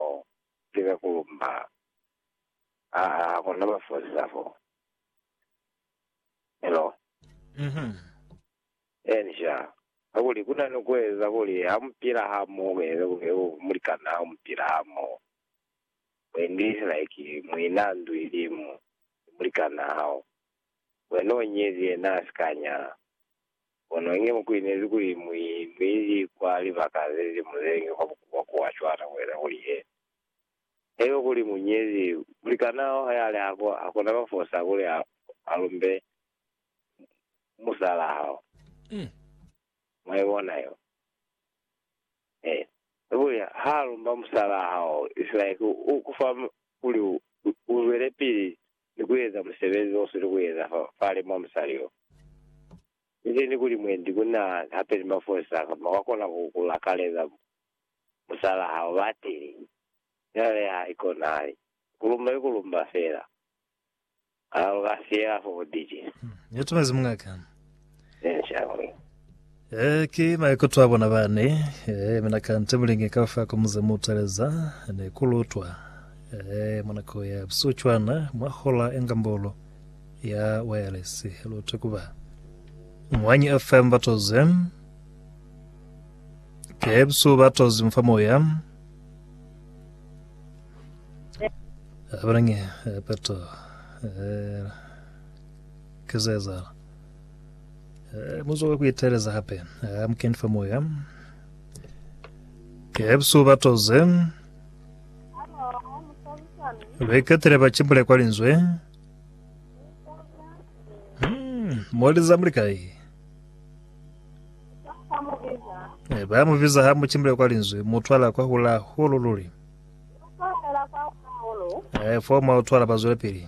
Bo lika ku lumba. Aa, hakuna ba fozisa fo. Hello? Inja. Kakuli ku na ni ku eza kuli ha mu pila hamoho, ku eza kuli yo mulikan'a hao mu pila hamoho. U English like muin'a ndu ilimu ni mulikan'a hao. Wena u nyezi, yena a si ka nyala. Kono inge mu kuinezi kuli mu inwili kwa libaka ze li muzengi kwa bukuba ku a cwana ku eza kuli he haiba kuli mu nyezi mulikan'a hao ha li hako, ha ku na ba fosa kuli a lumbe musal'a hao. Mwa i bona yeo? He. Ki kuli ha lumba musal'a hao, isilike u ku fa kuli u zwelepili ni kueza musebezi o sili kueza fa fale mwa musali yo. Inzeni kuli mwendi ku na hape ni mafosa kamba wa kona ku ku lakaleza musalaa hao ba tili, fela le ha ikonahali. Ku lumba ki ku lumba fela. Kana lu ka siela fo bubiti? Yo tumezi muñ'a ka. Benjamin. Eh, ki maikuto a bona bani. Eh, mina kante mulingi ka fa ku muze mu taleza ne ku lutwa. Eh, mwa nako ya busihu cwana, mwa hola enga mbolo ya wayalesi lute kuba mwanyi FM batoze ke busihu batozi mfa moya abanange peto eh, kizezala Eh, muzoke kuiteeleza hape eh, mukeni fa moya eh, busuku batoze beketele bacimbule kwa linzwe Hmm, moliza muli kai eh, bamubiza ha mucimbule kwa linzwe mutwala kwa hula hulu luli eh, foma utwala bazwele pili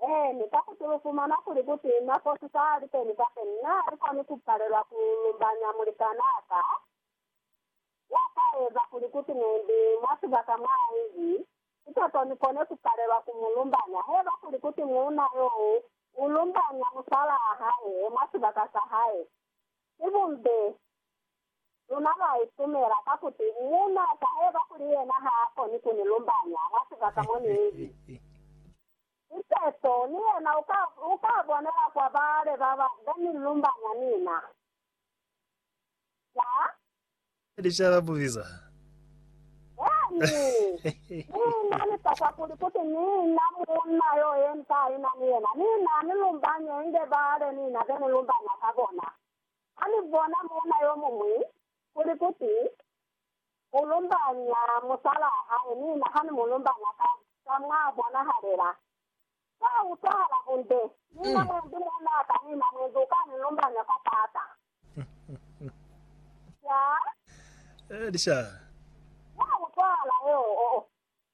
Eeni, ka kuti lu fumana kuli kuti nako si ka li teni kapeni, mi ha li koni ku palelwa ku lumbanya mulikanaa ka, ya ka eza kuli kuti ne ndi mwa sibaka mwa Ivy, ki toto ni kone ku palelwa ku mu lumbanya. Haiba kuli kuti muuna yo u lumbanya musalaa hae mwa sibaka sa hae, ki bumbe Luna lwa itumela ka kuti munhu a ka heba kuli yena ha a koni ku ni lumbanya mwa sibaka mo ni li. Ki seso, ni yena u ka, u ka bonela kwa bale ba ba, be ni lumbanya ni na. Ca? Licala bubiza. Yani, ni na ni tasa kuli, kuti ni na munna yo ye ni ka ina ni yena, ni na ni lumbanya inge bale ni na be ni lumbanya ka bona. Ha ni bona muuna yo muñwi kuli kuti u lumbanya musalaa hae mi na ha ni mu lumbanya ka za mwa bonahalela, kwa utwahala bunde. Mi na mwendi muunaa ka mina mwendi u ka ni lumbanya kwa taata. Sha. Kwa utwahala, yeo.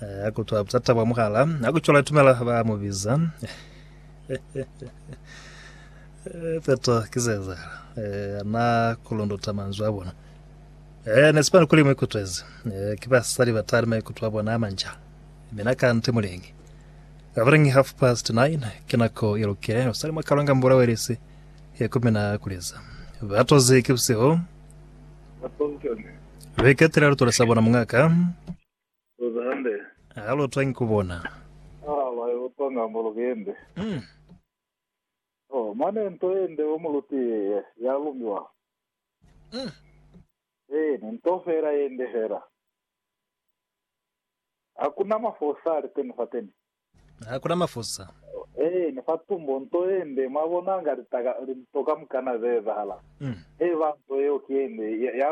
Ha ku twa butata bwa muhala, ha ku cwala tumela ba mu biza. Eh, Petro, ki se ezahala. Eh, na kulundota manzwi a bona. Eh, ne sipani kuli mu ikutwezi. Eh, ki basali ba tali maikutu a bona a manja. Mina kante mulingi. Abalingi half past nine, ki nako i lukile, usali mwa kalonga mbula welisi, ya ku mina a kuliza. Batozi ki busihu, Ba Pompeo ne. ba ikatela lutole sa bona mungaka. Leza hande. Ha lu twangi ku bona. Ha lwa yo twanga mo lu kende. Mm. Oh, mane nto ye nde o mu lutiye ye, ya lumiwa. Mm. Eeni, nto fela ye nde fela. Ha ku na mafosa ali teni fateni. Ha ku na mafosa. Eeni, fa tumbo, nto ye nde, mwa bona, nga litaka, linto kamukana ze ezahala. Mm. Eba nto yeo ki ye nde, ya, ya